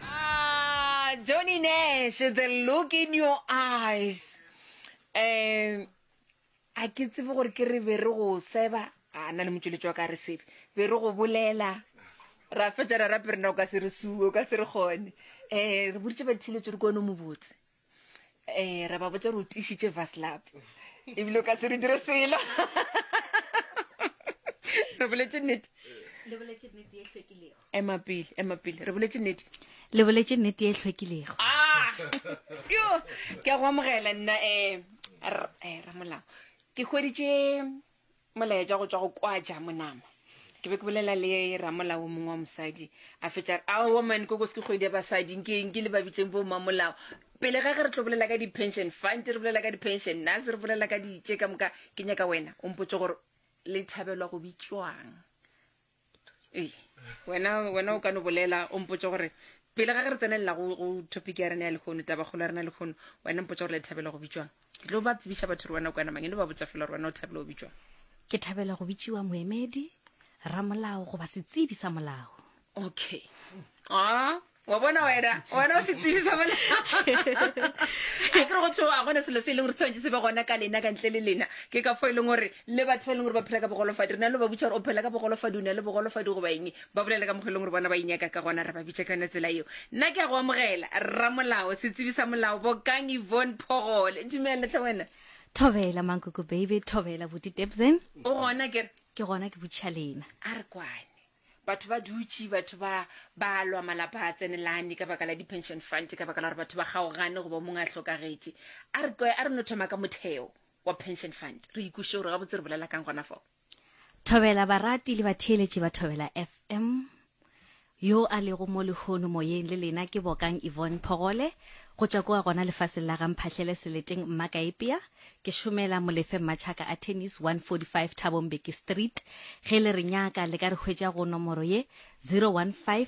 Ah, Johnny Nash, the look in your eyes. Um, a ke tsebe gore ke re be re go seba a na le motšweletši wa ka re sebe be re go bolela ra fetša ra rape rena o ka se re suo o ka se re kgone um re boditše bathiletso di kone mobotse um re ba botsa gore o tišitše vaslab ebile o ka se re dire selo re boletse nnete ema pele ema pele re boletse nnete le boletse nnete e hlwekilego ah! yo ke a go amogela nna um ramolao ke hweditše molaetša go tšwa go kwaja monama ke be ke bolela le ramolao mongwe wa mosadi a fetša re ao man koko se ke kgwedi ya basadi nke nke le babitseng bo mamolao pele ga ge re tlo bolela ka di-pension fund re bolela ka di-pension nase re bolela ka ditše ka moka ke nyaka wena o mpotse gore le thabelwa go bitswang ee wena wena o ka no bolela o mpotse gore pele ga ge re tsenelela go topic ya rena ya lekgono tabakgolo ya rena lekgono wena mpotse gore le thabelwa go bitswang Ke tlo ba tsebiša batho re wena kwana mang eno ba botša fela re wena o thabela o bitšwa. Ke thabela go bitšiwa moemedi, ramolao goba setsebi sa molao. Okay. Ah, wa bona wena, wena o setsebi sa molao. A ke re go thwe a gona selo se e leng gore tshwanetse se be gona ka lena ka ntle le lena. Ke ka fo e leng gore le batho ba e leng gore ba phela ka bogolofadi re na le ba botša gore o phela ka bogolofadi o na le bogolofadi goba eng. ba bolela ka mokgwa e leng gore bona ba inyaka ka gona re ba bitša ka yone tsela eo nna ke ya go amogela rramolao setsebi sa molao bokang ivon phogole dumele tle wena thobela mankoko baby thobela boti tebsen o gona kere ke gona ke botšiša lena a re kwane batho ba dutše batho ba ba lwa malapa a tsenelane ka baka la di-pension fund ka baka la gore batho ba kgaogane goba mongwe a hlokagetše a re kwe a re no thoma ka motheo wa Pension Fund. Re ikweše gore gabotse re bolela kang gona fo. Thobela barati le batheeletši ba Thobela FM. Yo a lego mo lehono moyeng le lena ke Bokang Yvonne Phogole go tšwa kua gona lefaseng la ga Mphahlele Seleteng Mmakaepea. Ke šomela Molefe Mmatšhaka Attorneys 145 Thabo Mbeki Street. Ge le re nyaka le ka re hwetša go nomoro ye 015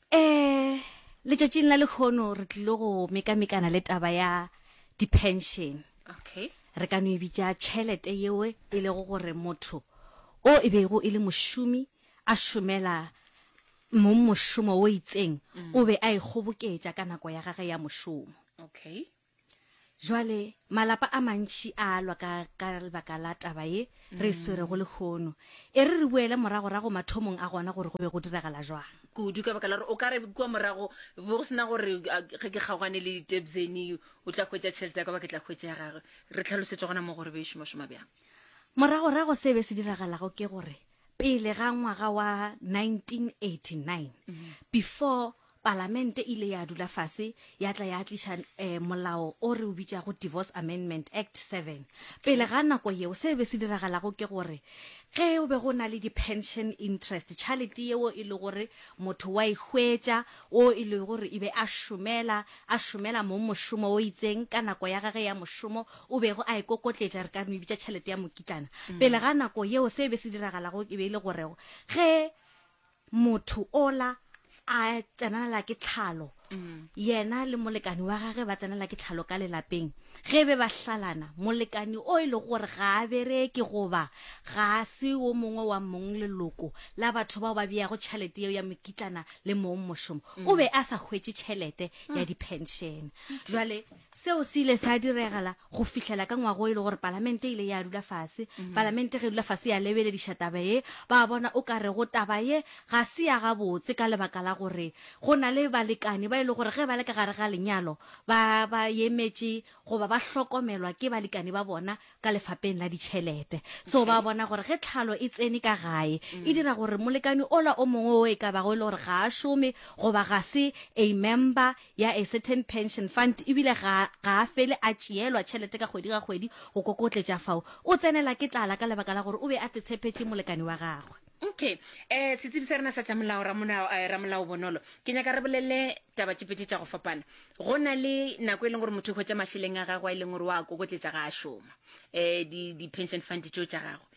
Ee, letšatšing la lekgono re tlilo go mekamekana le taba ya dipension. Okay. Re ka no e bitša tšhelete yeo e lego gore motho o e bego e le mošomi a šomela mong mošomo o itseng o be a e kgoboketša ka nako ya gage ya mošomo. Okay. Jwale, malapa a mantši a a lwa ka, ka lebaka la taba ye re e swerego lehono. E re re boele moragorago mathomong a gona gore go be go diragala jwang. Kudu, ka baka la gore o ka re kua morago be go se na gore a, ge ke kgaogane le Tebzeni o tla hwetša tšhelete ya ka goba ke tla hwetša ya gagwe. Re tlhalosetše gona moo gore e be e šomašoma bjang. Moragorago se be se diragalago ke gore pele ga ngwaga wa 1989, before Palamente e ile ya dula fase ya tla ya tliša um molao o re o bitšago Divorce Amendment Act 7. Pele ga nako yeo se be se diragalago ke gore ge o be go na le di-pension interest, tšhalete yeo e le gore motho wa e hwetša, wo e le gore e be a šomela, a šomela mong mošomo o itseng ka nako ya gage ya mošomo, o bego a e kokotletša, re ka no e bitša tšhalete ya mokitlana. Pele ga nako yeo se be se diragalago e be e le gore ge motho ola a tsenanela ke tlhalo yena le molekani wa gage ba tsenela ke tlhalo ka lelapeng ge be ba hlalana molekani o e le gore ga a bereke goba ga a se wo mongwe wa mong leloko la batho bao ba beyago tšhelete yeo ya mokitlana le mong mošomo o be a sa hwetše tšhelete ya dipenšene jwale Seo se ile sa diregela go fihlela ka ngwaga o e le gore Palamente e ile ya dula fase. Palamente ge e dula fase ya lebelediša taba ye, ba bona o ka rego taba ye ga se ya gabotse ka lebaka la gore go na le balekane ba e le gore ge ba le ka gare ga lenyalo ba ba emetše goba ba hlokomelwa ke balekane ba bona ka lefapeng la ditšhelete so ba bona gore ge tlhalo e tsene ka gae e mm. dira gore molekane ola o mongwe o e ka bago e le gore ga a šome goba ga se a member ya a certain pension fund ebile ga a fele a tšeelwa tšhelete ka kgwedi ga kgwedi go kokotletša fao o tsenela ke tlala ka lebaka la gore o be a tetshephetše molekane wa gagwe okay um setsebi sa rena sa tša molao ramolao eh, ramolao bonolo ke nyaka re bolele taba tše pedi tša go fapana go na le nako e leng gore motho o hwetša mašeleng a gagwe a e leng gore wa kokotletša ga a šoma um di-pension fund tšeo tša gagwe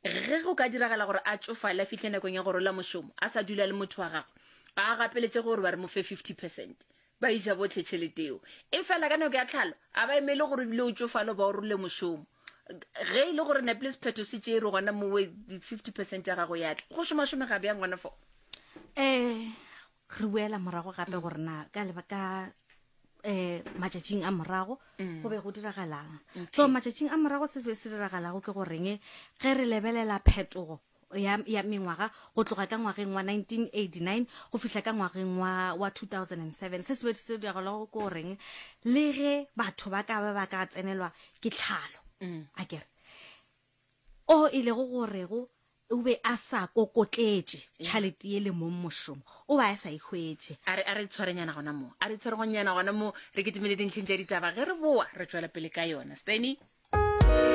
ge go ka diragala gore a tsofale a fitlhe nakong ya go rola mošomo a sa dula le motho wa gagwe a gapeletše gore ba re mo fe fifty percent ba iša botlhe tšheleteo e fela ka nako ya tlhalo a ba emele gore bile o tsofalo ba o role mošomo ge e le gore neple sephetho se tšee re gona mowe fifty percent ya gago ya tla go šomašome ga bjang gona fo um re boela morago gape mm. gore na ka lebaka um matšatšing a morago mm. go be go diragalang so matšatšing a morago se se be se diragalago ke goreng ge re lebelela phetogo ya, ya mengwaga go tloga ka ngwageng wa 1989 go fihla ka ngwageng wa, wa 2007 se sebe se diragalago ke goreng le ge batho ba ka ba ba ka tsenelwa ke tlhalo mm. a kere o e lego gorego o be a sa kokotletše tšhalete ye le mong mošomo o ba a sa ikgwetše a re tshwarenyana gona moo a re tshwaregonyana gona moo re ketemele dintlheng tša ditaba ge re boa re tswela pele ka yona steny